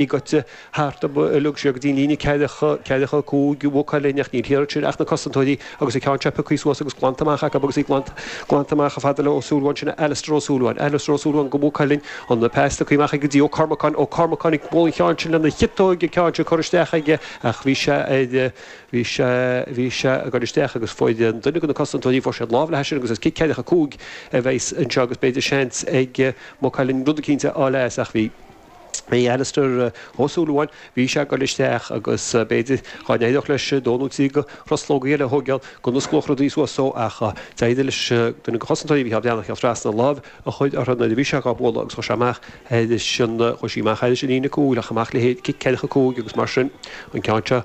i gcoitte thart orm a leag sé go dtí an líne ceathracha, ceathracha a cúig, i bhfocail eile, ach ní raibh thíos ansin ach na Cosantóirí agus an ceann seo pioctha suas agus glanta amach acu agus í glanta, glanta amach chomh fada le Ó Súilleabháin, sin é Alastair Ó Súilleabháin, Alastair Ó Súilleabháin do Mhaigh Cuilinn, an pas tugtha amach aige go dtí Ó Cormacáin, Ó Cormacáin ag bualadh an cheann sin lena chiotóig, an ceann sin curtha isteach aige ach bhí sé ar, bhí sé, bhí sé ag dul isteach agus fuair duine de na Cosantóirí, fuair siad lámh leis sin agus is cic ceathracha a cúig a bheidh anseo agus b'fhéidir seans ag Maigh Cuilinn rud eicínt a fháil as ach bhí. Bhí Alastair Ó Súilleabháin, bhí sé ag dul isteach agus b'fhéidir dhá n-éireodh leis dó nó trí de thruslógaí eile a thóigeáil go n-osclódh rudaí suas dó ach d'éirigh leis duine de chosantóirí Mhicheál Breathnach a théacht trasna, lámh a chur uirthi nuair a bhí sé dhá bualadh agus chuaigh sí amach thairis an, chuaigh sí amach thairis an líne cúil ach amach le haghaidh cic ceathracha a cúig agus mar sin an ceann seo.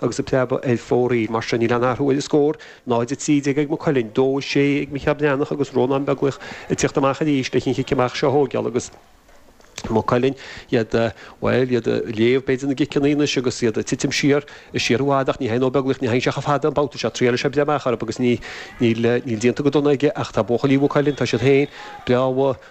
agus ag preabadh ar fóraoil. Mar sin, níl aon athrú ar an scór, 0:13 ag Maigh Cuilinn, 2:06 ag Micheál Breathnach agus Rónán Beaglaoich ag teacht amach arís leis an chic amach seo a thóigeáil agus Maigh Cuilinn, iad, bhuel, iad ag léamh, b'fhéidir, na gciceanna anois agus iad ag titim siar, is siar i bhfad ach ní thagann Ó Beaglaoich, ní thagann sé chomh fada an babhta seo, triaileadh sé breith amach orthu agus níl, níl, níl déanta go dona aige ach tá buachaillí Mhaigh Cuilinn, tá siad féin breá,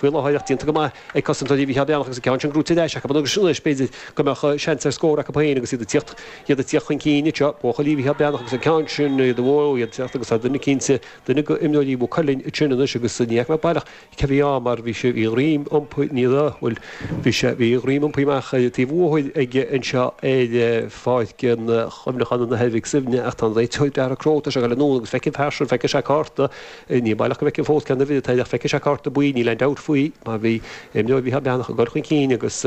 faoi láthair, ach déanta go maith ag cosantóirí Mhicheál Breathnach agus an ceann sin brúite ar ais acu anois, b'fhéidir go mbeadh seans ar scór acu féin agus iad ag teacht, iad ag teacht chun cinn anseo, buachaillí Mhicheál Breathnach agus an ceann sin, iad ó iad ag teacht agus tá duine cinnte, duine de imreoirí Mhaigh Cuilinn ansin anois agus ní fhaca mé baileach cé a bhí ann mar bhí sé, bhí a dhroim iompaithe, ní raibh, bhuel bhí sé, bhí a dhroim iompaithe amach ar an taobh bhóthair ag, anseo ar Pháirc an Chuimhneacháin i nDoire Mhic Suibhne ach tá an réiteoir Darragh Crowe, tá sé ag dul anonn agus feicfidh an fear sin, feicfidh sé cárta, Ní baileach go bhfeicim fós ceann ar bith atá lách. Feicfidh sé cárta buí, níl aon dabht faoi, mar bhí imreoir Mhicheál Breathnach ag dul chun cinn agus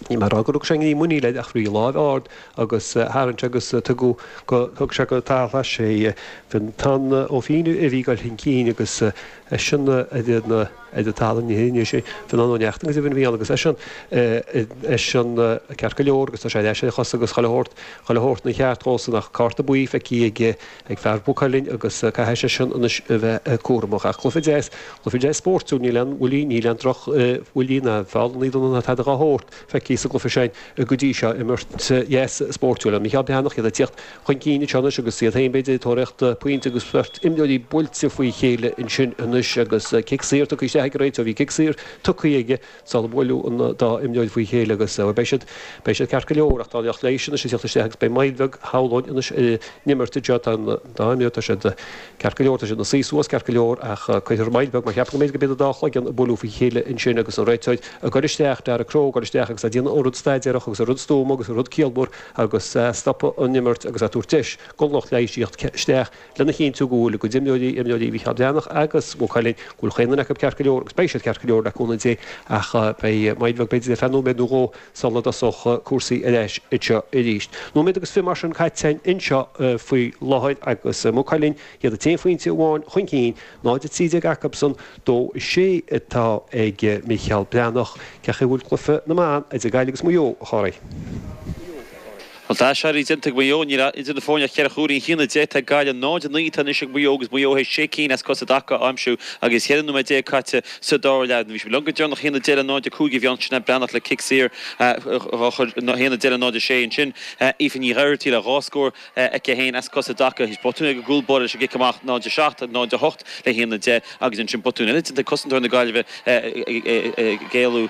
níl mé a rá gur rug sé i ngreim muiníl air ach bhí an lámh ard agus tharraing sé agus tugadh go, thug sé go Tarrtháil Thoir sé. Bhí an t-An Ó Fínneadh a bhí ag dul chun cinn agus eisean a bhí ina, ar an talamh anois, anois, bhí an An Ó Neachtain agus a bhí ina Fhial agus eisean, eisean ceart go leor agus tá sé ar ais ar a chosa agus chuile shórt, chuile shórt i gceart dhósan ach cárta buí feicthe ag, ag fear Mhaigh Cuilinn agus caithfidh seisean anois a bheith cúramach. Ach cluiche deas, cluiche deas spóirtiúil, níl aon bhuillí, níl aon droch bhuillí ná feallannaí dona ná tada dhá shórt feicthe sa gcluiche sin go dtí seo, imirt deas spóirtiúil ann. Mícheál Breathnach, iad ag tíocht chun cinn anseo anois agus iad féin b'fhéidir ag tóraíocht pointe agus beirt imreoirí buailte faoi chéile ansin anois agus cic saor tugtha isteach ag an réiteoir, bhí cic saor tugtha ag. sular buaileadh an dá imreoir faoi chéile agus beidh siad, beidh siad ceart go leor ach tá an lucht leighis anois ag teacht isteach agus beidh moill bheag, shamhlóinn, anois ar an imirt anseo, tá an dá imreoir, tá siad ceart go leor, tá siad ina suí suas ceart go leor ach cuirfear moill bheag mar ceapaim go mb'fhéidir gurb é an dá chloigeann a buaileadh faoi chéile ansin agus an réiteoir ag dul isteach, Darragh Crowe ag dul isteach agus a' déanamh an rud staidéarach agus an rud stuama agus an rud ciallmhar agus a' stopadh an imirt agus a' tabhairt deis gon lucht leighis theacht isteach lena chinntiú go bhfuil a gcuid imreoirí, imreoirí Mhicheál Breathnach agus Mhaigh Cuilinn, go bhfuil chaon duine acu ceart go leor agus beidh siad ceart go leor le cúnamh Dé ach beidh moill bheag b'fhéidir ar feadh nóiméad nó dhó sula dtosóidh cúrsaí ar ais anseo arís. Nóiméad agus fiche mar sin caite anseo faoi láthair agus Maigh Cuilinn, iad an t-aon phointe amháin chun cinn, 0-13 acubsan, 2-6 atá ag Micheál Breathnach. Cén chaoi a bhfuil cluiche na mban idir Gaillimh agus Maigh Eo a Chárthaigh? An t-aiséirí déanta ag Maigh Eo, níl ann idir na foirne ach ceithre chúilín, 1-10 atá ag Gaillimh, 0-9 atá anois ag Maigh Eo agus Maigh Eo théis sé cinn as cosa i dtaca a aimsiú agus cheithre nóiméad déag caite sa dara leath. Bhí siad leo go deireanach, 1-10 le 0-5 a bhí ann, Sinéad Breathnach le cic saor a chur 1-10 le 0-6 ansin, Aoife Nig Oireachtaigh le dhá scór aici féin as cosa i dtaca théis botún ag an gcúl báire leis an gcic amach, 0-7, 0-8 le 1-10 agus ansin botún eile déanta ag cosantóir na Gaillimhe ag éalú.